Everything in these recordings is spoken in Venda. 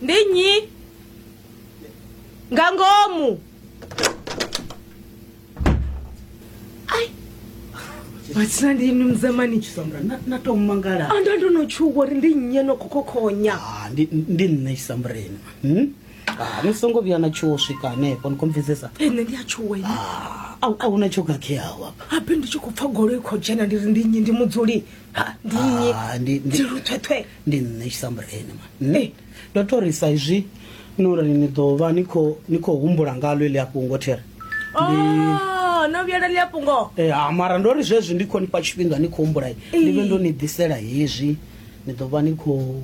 ndi nnyi nga ngomu ai matsina ndi inu mzamani Sandra, na- natomangala anda ndonotchuka uri ndi nnyi enokhokhonya Ah, ndi ndi nṋe chisambureni Hmm? Ah, ni songo vhuya na tshuwo swika hanefho ni khomvedzesa ene ndi atshuwa ine a hu na tshokhakheaho apa habe ndi tshi khou pfa goloi khou dzhena ndi ri ndi nnyi ndi mudzuli Ah, ndi nnyi Ah, ndi- ndi- Tshiluthwethwe. ndi nṋe tshisambureni ma nṋe Eh. ndo to ri sa izwi no ri ni ḓo vha ni khou ni khou humbula ngalo ili a fhungo there Oh, no vhuyela ḽi a fhungo Eh, ha mara ndo ri zwezwi ndi khou ni fha tshifhinga ni khou humbula ndi vhe ndo ni ḓisela hezwi ni ḓo vha ni khou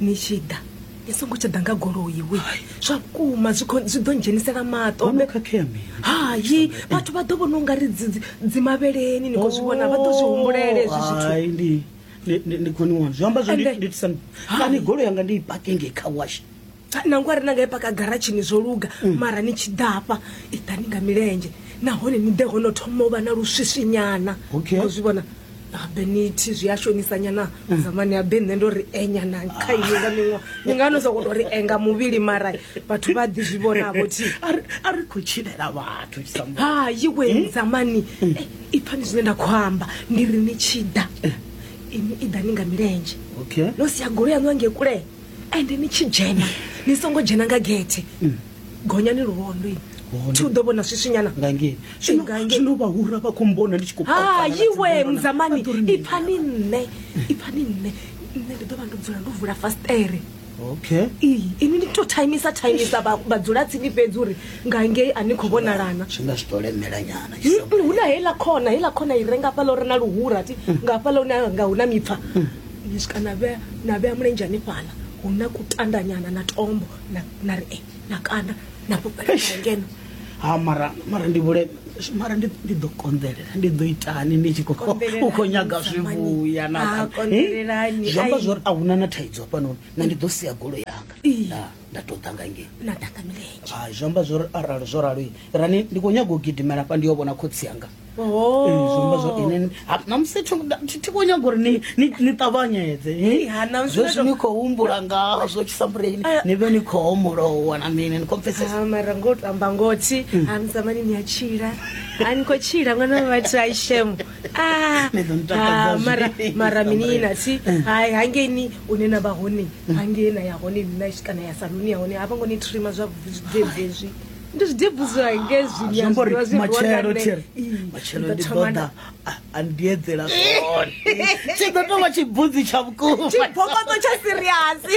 ni tshi ḓa ni songo tsha ḓa nga goloi we zwa vhukuma zwi khou- zwi ḓo ndzhenisela maṱo Wono khakhea mini? hayi vhathu vha ḓo vhona u nga ri dzi- dzi- dzimavheleni ni khou zwi vhona vha ḓo zwi humbulele hezwi zwithu Hai, ndi- ndi- ndi- ndi khoni wanu zwi amba zwo Ende- nditisa Hai. kani golo yanga ndi i pake ngei kha wash nangwe ari na nga i paka garatshini zwo luga Mm. mara ni tshi ḓafha i ḓani nga milenzhe nahone ni ḓe ho no thoma u vha na luswiswinyana Okay. Ni khou zwi vhona habe nithi zwi a shonisa nyana mm. zamani habe nṋe ndo ri enya na kha ini nga miṅwa ni nga no sokoto ri enga muvhili mara vhathu vha ḓi zwi vhonavho thi a ri khou tshilela vhathu ha yiwe mm. zamani mm. eh, i pfani zwine nda khou amba ndi ri ni tshi ḓa eh. ini i ḓa ni nga milenzhe no sia golo yaṋu ange kule ende ni tshi dzhena ni songo dzhena nga gethe gonyani luvhondo ini Luvhondo. thi u ḓo vhona swiswinyana nga ngei Ee, nga ngei. zwino vhahura vha khou mbona ndi tshi khou hai kopana na iwe dzimbona. muzamani Vha ḓo ri mini? ipfani nṋe ipfani nṋe nṋe ndi ḓo vha ndo dzula ndo vula fastere okay iyi ini ndi to taimisa taimisa vha- vhadzula tsini fhedzi uri nga ngei a ni khou vhonalana zwi nga zwi tou lemela nyana tshi sa Mm, hu na heiḽa khona heiḽa khona i re nga hafhaḽa uri na luhura ti nga hafhaḽa hune ha- nga hu na mipfa ni swika na vhea na vhea mulenzhe hanefhaḽa hu na kutandanyana na tombo na, na ri eh, na kanda na fhufhela Eish. na ngeno ha mara mara ndi vhule mara ndi ndi ḓo konḓelela ndi ḓo itani ndi tshi khou Konḓelelani, u khou nyaga zwi Samani. vhuya Ah, na konḓelelani, zwi amba ai. zwori a huna na thaidzo hafhanoni na ndi ḓo sia golo yanga Ii. Nda- nda tou ḓa nga ngei na ḓaka milenzhe hai zwi amba zwori arali zwo ralo rani ndi khou nyaga u gidimela hafha ndi yo vhona khotsi yanga namusi ti khou nyaga uri ni ṱavhanyedze zwezwi ni khou humbula ngazwo tshisambureni ni vhe ni khou homolowa na mini ni khou pfesesmara ngo tamba ngothi ani zamani ni a tshila a ni khou tshila ṅwana wa vhathu a ishemo mara mara mini na thi hai hangei ni une na vha hone hangei na ya hone ni na kana ya saluni ya hone a vho ngo ni trima zwavhuḓi zwi ndi zwi dibuzwa nge zwinyazwiwa zwi matshelo tshiri matshelo ndi ḓo ḓa a ndi edzela zwone tshi ḓo tou vha tshibudzi tsha vhukuma tshibokoto tsha siriasi